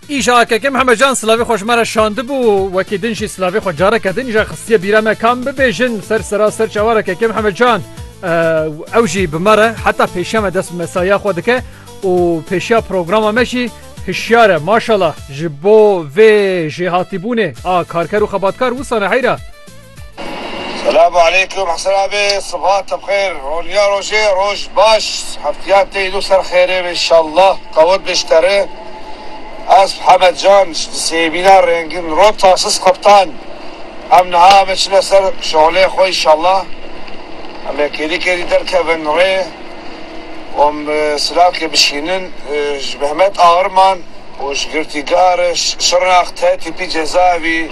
Îşa AKK Mihemed Can Silavê xweş me re şandibû wekî din jî silavê xwe careke din îşa xistiye bîra me kam bibêjin ser sera ser çawa re KK Mihemed Can ew jî bi me re heta pêşiya me dest bi mesaiya xwe dike û pêşiya programa me jî hişyar e maşala ji bo vê jêhatîbûnê a karker û xebatkar wisane heyra. Selamu aleykum Hesen abi Sibat bi xêr Roniya rojê roj baş Heftiya tê îno ser xêrê be inşallah Qewet be ji te re Ez Hemed Can ji di sêvîna rengin ro Tasis Qeptan Em niha ame çine ser şolê xwe inşallah Em ê kêrî kêrî derkevin rê û em silavkê bişînin ji Mehmet Agirman û ji girtîgah re Şirnax T-Tîpî Cezayevî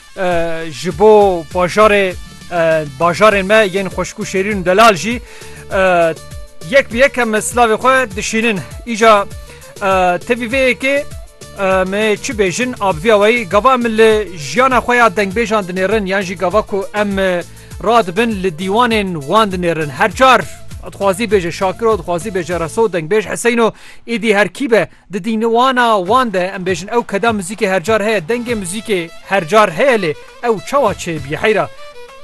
Ji bo bajarê bajarên me yên xweşkû şêrîn delal jî yek bi yek em slavê xwe dişînin. Îca tevî vê yekê me çi bêjin abviya weyî gava em li jiyana xwe ya dengbêjan dinêrin yan jî gava ku em radibin li dîwanên wan dinêrin her car dixwazî bêje şakiro dixwazî bêje reso dengbêj heseyno êdî herkî be Di dînwana wan de em bêjin ew keda muzîkê her car heye, dengê muzîkê her car heye lê ew çawa çêbî heyra.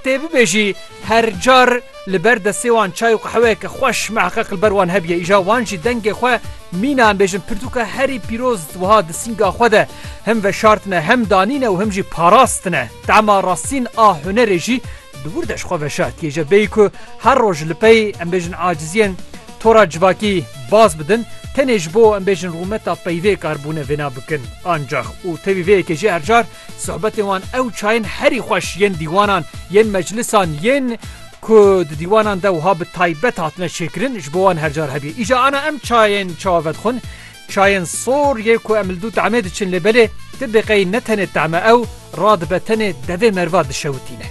Tê bibêjî her car li ber destê wan çay û qehweyeke xweş miheqeq li ber wan hebîye îja wan jî dengê xwe mîna em bêjin pirtûka herî pîroz wiha di sînga xwe de him veşartine hem danîne û him jî parastine. Tema rastîn a hunerê jî Di wir de ji xwe ve şertiyê jî bêyî ku her roj li pey em bêjin aciziyên tora civakî baz bidin tenê ji bo em bêjin rûmeta peyvê kar bûne vêna bikin. Ancax û tevî vê yekê jî her car sohbetên wan ew çayên herî xweş yên dîwanan yên meclisan yên ku di dîwanan de wiha bi taybet hatine çêkirin ji bo wan her car hebî. Îja ana em çayên çawa vedixwin Çayên sor yê ku em li dû tahmê diçin lê belê ti biqey ne tenê tahme ew radibe tenê devê merva dişewitîne.